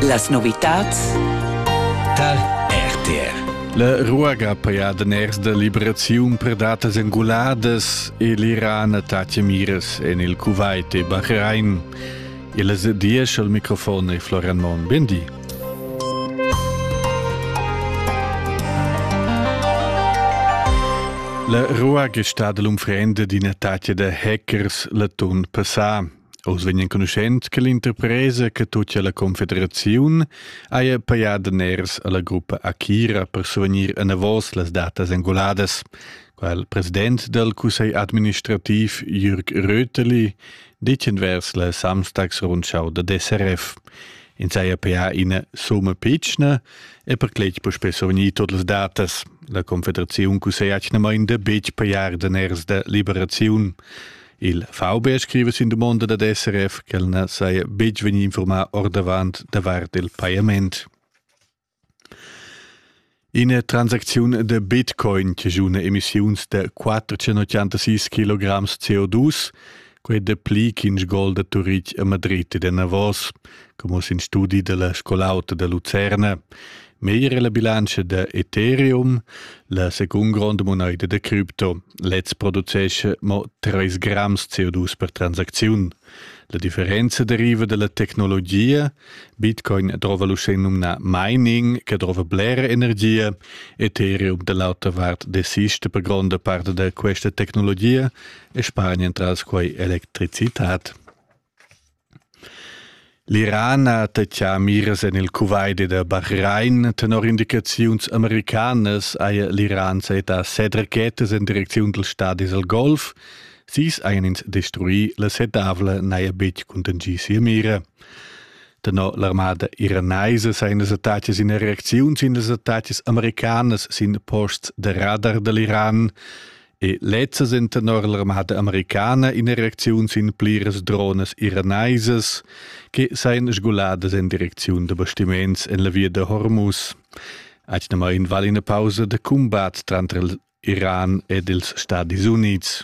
Las novitads Tal RTR La ruaga paia daners da liberaziun per datas anguladas e l'Iran tattia miras en il Kuwait e Bahrain. Il diesch al microfon è Florian Mon. Bendi. La ruaga è stata l'unfrenda d'ina tattia da hackers l'atun passà. Oz vegn enconuschent che l'interpresa che tutgia alla confederaziun haja pajà daners alla gruppa Akira per survegnir enavos las datas engoladas. Qua il president dal cussegl administrativ Jürg Röteli ditgen vers la Samstagsrundschau da DSRF. In saja pajà ina summa pitschna e per cletg per spess survegnir tut las datas. La confederaziun cusseglia atgnamain da betg pajar daners da liberaziun. Il VB scriva sin dumonda dad SRF ch'el na saja betg vegnì informaà ordavant davart il pajament. Ina transacziun da Bitcoin che giuna emissiuns da 486 kg CO2, quei de pli ch'in gol da Turitg a Madrid e da Navos, come in studi della scolauta da Lucerna. Meglier è la bilantscha da Ethereum, la secund gronda monaida da cripto. Lez producesce mo 3 grams CO2 per transacziun. La differenza deriva dalla tecnologia. Bitcoin drova l'uschè numnà mining, che drova blera energia. Ethereum dall'auta vart desista per gronda parte da questa tecnologia e spargna entras quei electricitat. L'Iran ha tatschà miras en il Kuwaiti da Bahrain. Tenor indicaziuns americanas haja l'Iran sajettà set rachetas en direcziun dals stadis al Golf. Sis hajan ins destruì, la setavla n'haja betg contingì sia mira. Tenor l'armada iranaisa sajan las attacas ina reacziun sin las attacas americanas sin posts da radar da l'Iran. E lezzas en tenor l'armada americana ina reacziun sin pliras dronas iranaisas che sajan sguladas en direcziun da bastiments en la via da Hormuz. Aghnamain vale ina pausa da combat tranter Iran ed ils Stati Unids.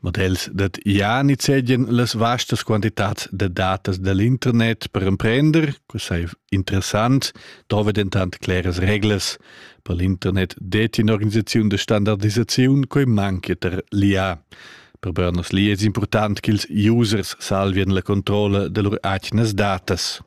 Mod els dat ja nizegien las vastas quantitats da datas dall'internet per emprender, co sei interessant, dove dentant claras reglas per l'internet det in organisaziun de standardisaziun quei manchia ter l'IA. Per Bernos li es important ch'ils users salvien la controlla de lur atgnas datas.